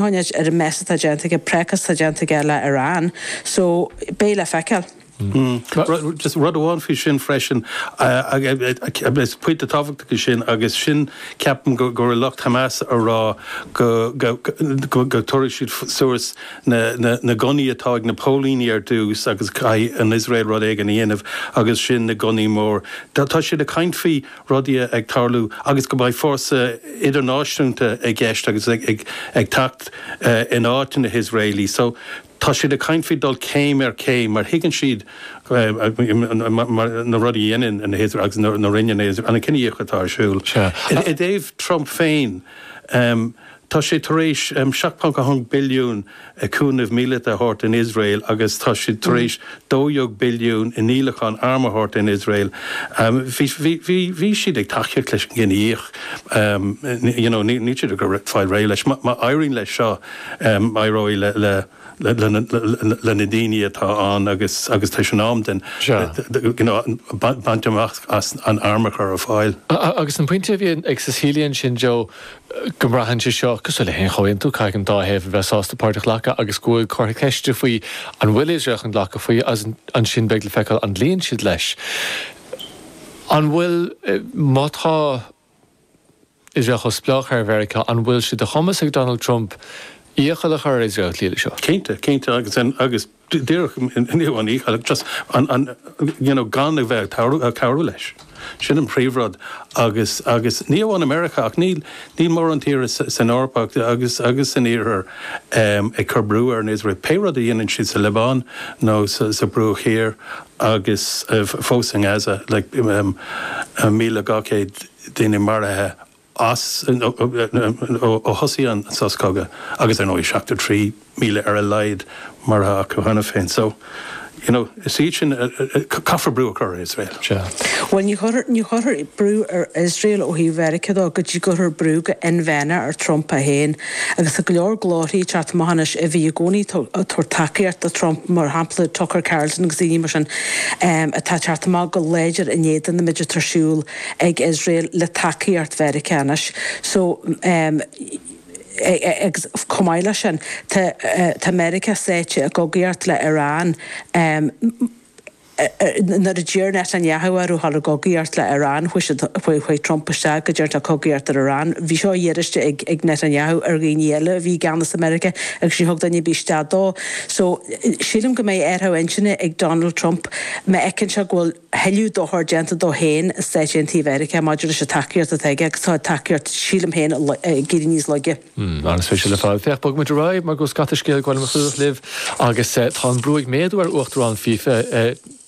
Tániad ar an mbés atá déanta aige précas atá déanta aige le ar an so beidh le feiceáil. Just rud amháin faoi sin freisin, agus pointe tábhachtach é sin, agus sin ceapaim go raibh lucht Hamas ag rá go dtabharfaidh siad suas na gunnaí atá ag na póilíní ar dtús agus caithfidh an Iosrael rud éigin a dhéanamh agus ansin na gunnaí móra. Tá siad ag caint faoi rudaí ag tarlú agus go mbeidh fórsa idirnáisiúnta i gceist agus ag teacht in áit na nIosraelach so tá siad ag caint faoi dul céim ar chéim mar thuigeann siad na rudaí a dhéanann na hIosraelaigh agus a rinne na hIosraelaigh an cinedhíothú atá ar siúl. I dtaobh Trump féin, Tá sé tar éis £7.1 billiún cúnamh míleata a thabhairt don Iosrael agus tá siad tar éis £12 billiún i ndíolachán arm a thabhairt don Iosrael. Bhí siad ag tacaíocht leis an ngníomh. Níl siad ag fáil réidh leis. Má éiríonn leis seo, éireoidh le. leis na daoine atá ann agus agus tar éis an am den you know baint amach as an airm a chur ar fáil. Agus an pointe a bhí ag Cecilia ansin Joe go mbraitheann sé seo cosúil le haon chomhaontú, caithfidh an dá thaobh a bheith sásta páirt a ghlacadh agus go bhfuil comhartha ceiste faoi an bhfuil Iosrael chun glacadh faoi seo agus ansin beidh le feiceáil an gcloíonn siad leis. An bhfuil, má tá, Iosrael chomh spleách ar Mheiriceá, an bhfuil sé de chumas ag Donald Trump iachall a chur ar Iosrael cloí leis seo? Cinnte, cinnte agus agus díreach inniu an iachall just an an you know gan a bheith ag cabhrú ag cabhrú leis. Sin an príomhrud agus agus ní amháin i Meiriceá ach níl níl mórán tír san Eoraip ach agus agus san Iarthar ag cur brú ar an Iosrael pé rud a dhéanann siad sa Liobáin nó sa Bhruach Thiar Agus fós i nGaza, le míle dhá chéad duine maraithe acu ó thosaigh an sos cogaidh, agus ar ndóigh seachtó trí míle ar a laghad maraithe acu cheana féin. So, you know, is iad sin, caithfear brú a chur ar Iosrael. Sea. Bhuel, ní chuirfear brú ar Iosrael ó thaobh Mheiriceá de go dtí go gcuirfear brú go hinmheánach ar Trump é féin. Agus tá go leor glórthaí ag teacht amach anois a bhí i gcónaí ag tabhairt tacaíocht do Trump, mar shampla Tucker Carlson agus daoine mar sin, atá ag teacht amach go láidir in éadan an méid atá ar siúl ag Iosrael le tacaíocht Mheiriceá anois. So agus chomh maith leis sin, tá Meiriceá sáite i gcogaíocht le Iran. nuair a d'iarr Netanyahu air a dhul i gcogaíocht le Iran, chuaigh Trump isteach go dtí an chogaíocht ar Iran. Bhí seo iarrtha ag Netanyahu ar dhaoine eile a bhí i gceannas i Meiriceá agus níor thug duine ar bith isteach dó. So, sílim go mbeidh athrú intinne ag Donald Trump má fheiceann sé go bhfuil tuilleadh dochar déanta dó féin sna Stáit Aontaithe Mheiriceá maidir leis an tacaíocht atá aige agus tá tacaíocht, sílim féin, ag éirí níos laige. Mmm, an-spéisiúil ar fad. Féach, bogaimis ar aghaidh mar go bhfuil scata scéalta eile le clúdach libh agus tá an brú ag méadú ar Uachtarán fifa,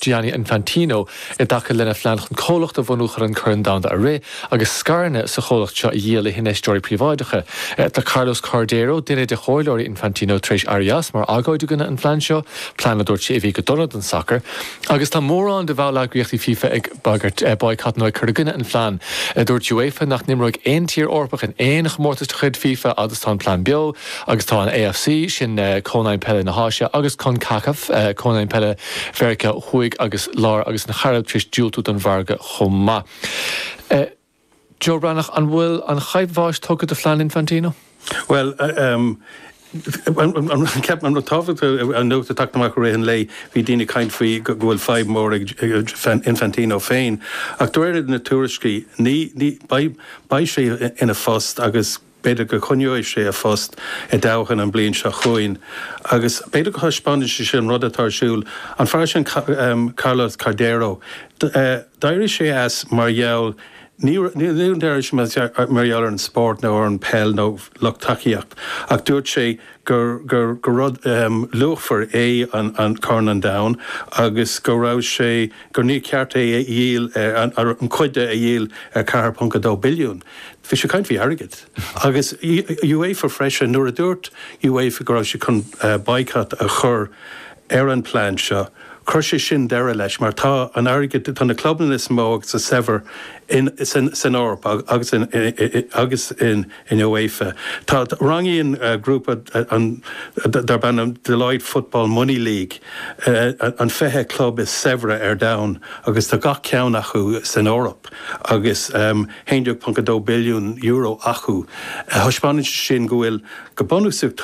Gianni Infantino, i dtaca lena phlean chun comhlacht a bhunú chun an Corn Domhanda a rith agus scaireanna sa chomhlacht seo a dhíol le hinfheisteoirí príobháideacha. Tá Carlos Cordeiro, duine de chomhairleoirí Infantino, tar éis éirí as mar agóid i gcoinne an phlean seo. Plean a dúirt sé a bhí go dona don sacar agus tá mórán de bhalleagraíochtaí fifa ag bagairt baghcat nó ag cur i gcoinne an phlean. Dúirt UEFA nach n-imreoidh aon tír Eorpach in aon chomórtas de chuid fifa fhad is tá an plean beo agus tá an AFC, sin Cónaidhm Peile na hÁise, agus Concacaf, Cónaidhm Peile Mheiriceá Thuaidh agus Láir agus na Cairibe, tar éis diúltú don mhargadh chomh maith. Joe Breathnach, An bhfuil an chaidhp bháis tugtha do phlean Infantino? Bhuel, ceapaim an rud tábhachtach a nochtadh, teacht amach i rith an lae, bhí daoine ag caint faoi go bhfuil fadhb mhór ag Infantino féin, ach de réir na tuairiscí, ní, ní bheidh sé ina phost agus. B'fhéidir go gcoinneoidh sé a phost i dtoghchán an bhliain seo chugainn agus b'fhéidir go dtaispeánann sé sin rud atá ar siúl, an fear sin Carlos Cordeiro, d'éirigh sé as mar gheall, ní raibh, d'éirigh sé as mar gheall ar an spórt nó ar an peil nó lucht tacaíochta ach dúirt sé gur, gur, gur rud luachmhar é an Corn an Domhain agus go raibh sé, gur níor cheart é a dhíol, nó cuid de a dhíol ar 4.2 billiún. Bhí sé ag caint faoi airgead. Agus UEFA freisin. Nuair a dúirt UEFA go raibh siad chun baghcat a chur ar an bplean seo, chuir sé sin deireadh leis mar tá an airgead, tá na clubanna is mó agus is saibhre san Eoraip agus in UEFA. Rangaíonn grúpa darb ainm Deloitte Football Money League an 20 club is saibhre ar domhan agus tá gach ceann acu san Eoraip. €11.2 billiún acu. Thaispeánann sé sin go bhfuil, go bunúsach,